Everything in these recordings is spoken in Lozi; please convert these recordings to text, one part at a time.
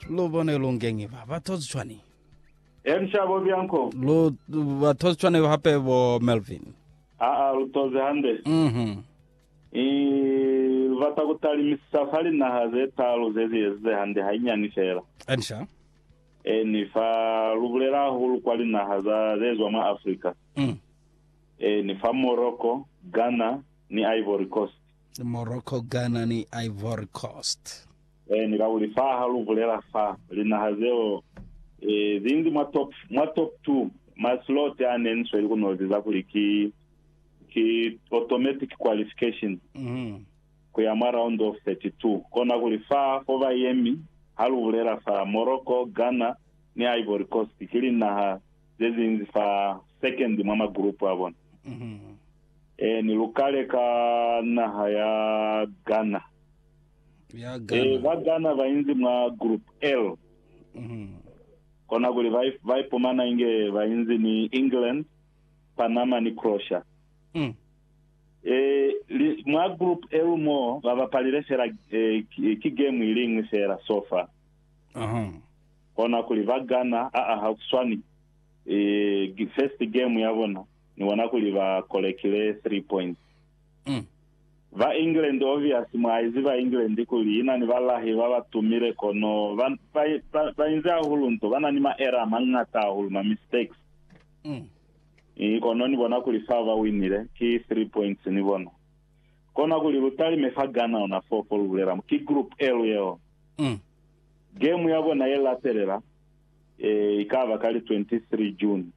Lu bone lu ngengi ba ba tozi cwani. Elisha bo Bianco. Lu ba tozi cwani hape bo Melvin. Aa, lu tozi hande. Mhm. I, lu bata ku talimisisa fa linaha ze taalu ze zi ezize hande hainyani fela. Elisha. Eni, fa lu bulela hahulu kwa linaha za ze zwa mwa Afrika. Mm. Eni, fa Morocco, Ghana, ni Ivory Coast. Morocco, Ghana ni Ivory Coast. E ni kauli fa ha lu bulela fa linaha zeo e, zi nzi mwa top, mwa top two, ma slot a ne ni sweli ku nozi za kuli ki, ki automatic qualification mm. ku ya mwa round of 32. Kona kuli fa fo ba yemi ha lu bulela fa Morocco, Ghana ni Ivory Coast ki linaha ze zinzi fa second mwa ma group a bona. Mm. Ee, ni lu kale ka naha ya Ghana. Ya Ee, Ghana. ba Ghana ba inzi mwa Group L, Mhm. kona kuli ba i- ba ipumana inge ba inzi ni England, Panama ni Croatia. Mm. Eh, li, mwa group L mo ba bapalile fela eh, ki, ki game i lingwi fela so far Aha. kona kuli ba Ghana a a ha kuswani eh, gi- first game ya bona ni bona kuli ba kolekile three points. Mm. Ba England obvious mwaizi ba England kuli ina ni balahi ba ba tumile kono ba, ba, ba, ba inze hahulu nto ba na ni ma error mangata hahulu ma mistakes. Mm. I kono ni bona kuli fa ba winile ki three points ni bona. Kona kuli lu talime fa Ghana ona fo fo lu bulela ki group L yeo. Mm. Game ya bona ye latelela eh ikaba ka li 23 June.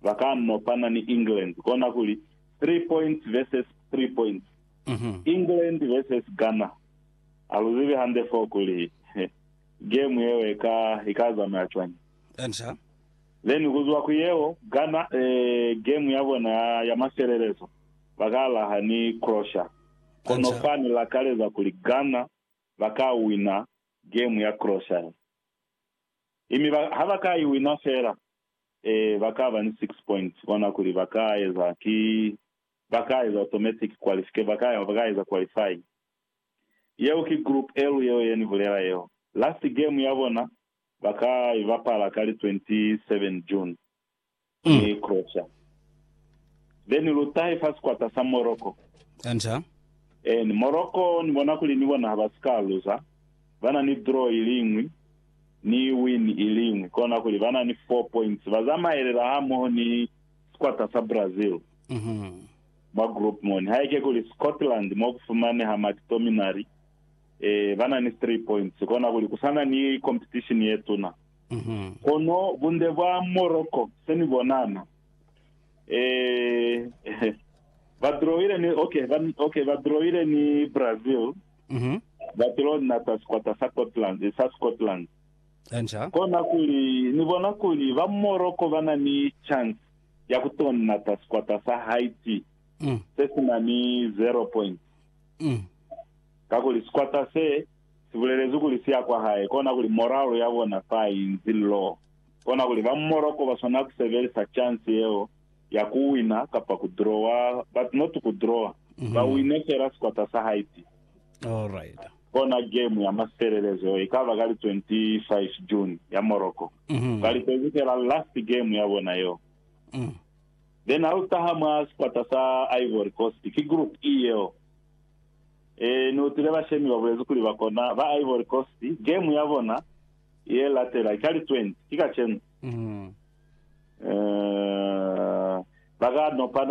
ba ka no pana ni England kona kuli three points versus three points. England versus Ghana ha lu zibi hande foo kuli game yeo e ka i ka zamaya cwañi. Then ku zwa ku yeo Ghana eh, game ya bona ya, ya mafelelezo ba ka laha ni Croatia. Kono fa ni lakaleza kuli Ghana ba ka wina game ya Croatia. Ee, mi ba, ha ba ka i wina fela, ee, ba ka ba ni six points, bona kuli ba ka eza ki, ba ka eza automatic qualification, ba ka, ba ka eza qualify. Yeo ki Group L yeo ye ni bulela yeo. Last game ya bona ba ka i bapala ka li 27 June. ni Croatia. Then lu tahe fa sikwata sa Morocco. Enter. And Morocco ni bona kuli ni bona ha ba si ka luza. Ba na ni draw i li ñwi, ni win i li ñwi. Kona kuli ba na ni 4 points. Ba zamaelela hamoho ni sikwata sa Brazil mwa group moni. Haike kuli Scotland mo ku fumaneha Mactominay, ba na ni 3 points. Kona kuli ku sa na ni competition ye tuna. Kono bunde bwa Morocco se ni bonana. Eh, ba drawile ni, okay, ba, okay, ba drawile ni Brazil. Ba tilo nata sikwata sa Scotland, sa Scotland. Enja. Kona kuli, ni bona kuli ba Morocco ba na ni chance ya ku to nata sikwata sa Haiti. Se si na ni zero point. Kakuli sikwata se, Si bulelezwi kuli siya kwa hae kona kuli moralo ya bona fa inzi lo. Kona kuli ba Morocco ba swanela ku sebelisa chance yeo ya ku wina kapa ku drawa, but not ku drawa, ba wine fela sikwata sa Haiti. Alright. Kona game ya masifelelezo yeo ikaba ka li 25 June ya Morocco. Ba litezi fela last game ya bona yeo. Then ha lu taha mwa sikwata sa Ivory Coast, ki Group E yeo. Ee, ni utwile bashemi ba bulezi kuli ba kona ba Ivory Coast game ya bona ye latela ka li 20, ki kacenu. Ee, ba ka nopana